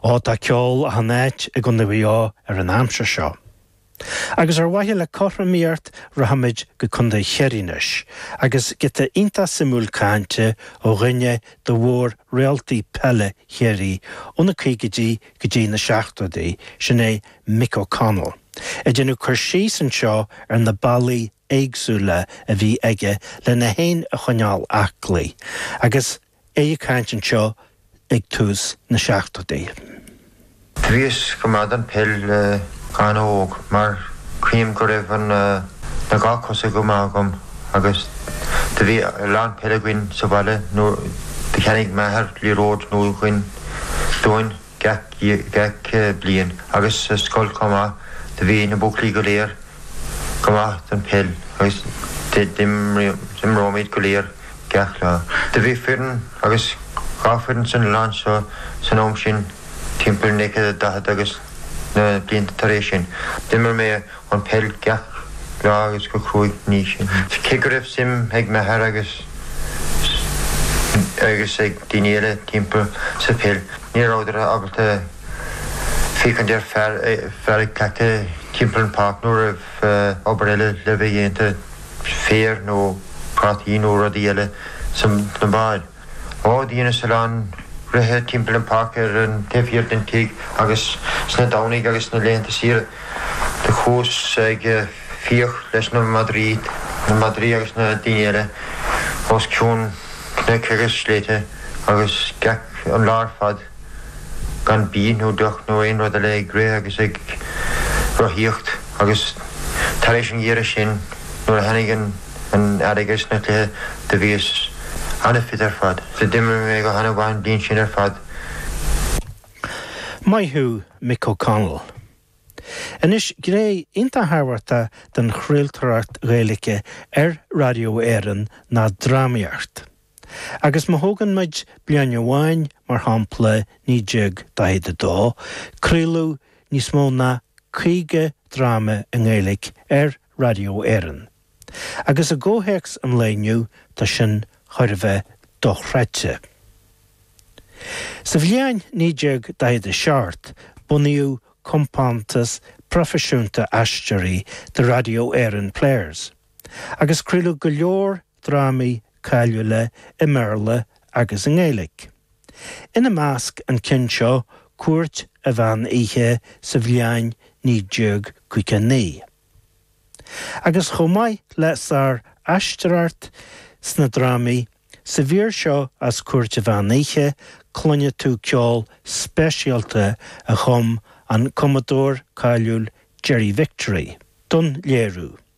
Ó tá ceol á chanadh i gContae Mhaigh Eo ar an aimsir seo. Agus ar mhaithe le cothromaíocht rachaimid go Contae Chiarraí anois agus giota iontach suimiúil cainte ó dhuine de mhór-réaltaí peile Chiarraí ó na caogaidí go dtí na seachtóidí, sin é Mick O'Connell ag déanamh cur síos anseo ar na bealaí éagsúla a bhí aige le é fhéin a choinneáil aclaí agus a é ag caint anseo ag tús na seachtóidí. Bhíos go maith don peil go han-óg mar chreidim go raibh an na dhá cosa go maith agam agus do bhí a lán peil againn sa bhaile mar do cheannaigh m'athair liathróid nua dhuinn. gach bliain agus sa scoil chomh maith. Do bhí na buachaillí go léir go maith chun peil agus d'imríomar go léir gach lá. Do bhí foireann agus dhá foireann san oileán seo san am sin timpeall 1940 agus na blianta tar éis sin. D'imir mé. an peil gach lá agus go cruaidh ina dhiaidh sin. Cé go raibh suim ag m'athair agus agus ag daoine eile timpeall sa pheil, ní rabhadar ábalta féachaint ar fear ag cleachtadh timpeall an pháirc nuair a bhí obair eile le bheith déanta, féar nó prátaí nó rudaí eile sna baill. Do dheineas a lán rith timpeall an pháirc ar an taobh thiar den tigh agus sna Domhnaigh agus sna laethanta saoire do chuas ag fiach leis na madraí na madraí agus na daoine eile os cionn cnoic agus sléibthe agus gach aon lá ar fad. gan bia nó deoch nó aon rud eile ag rith agus ag rothaíocht agus tar éis an gheimhridh sin nuair a tháinig an t-earrach is na cluichí do bhíos an-fit ar fad so d'imir mé go han-mhaith an bhliain sin ar fad. Maith thú Mick O'Connell. Anois gné iontach tábhachtach den chraoltóireacht Ghaeilge ar Raidió Éireann ná drámaíocht. Agus má thógann muid bliain amháin mar shampla, 1942, craoladh níos mó ná 50 dráma i nGaeilge ar Radio Éireann. Agus i gcomhthéacs an lae inniu, tá sin chóir a bheith dochreidte. Sa bhliain 1947, bunaíodh compántas proifisiúnta aisteoirí, The Radio Éireann Players, agus craoladh go leor drámaí cáiliúla i mBéarla agus i nGaeilge, ina measc an ceann seo Cúirt a' Mheán Oíche sa bhliain 1959, agus chomh maith le sár-aisteoireacht sna drámaí, sa mhír seo as Cúirt a' Mheán Oíche cluinfidh tú ceol speisialta a chum an cumadóir cáiliúil Gerry Victory don léiriú.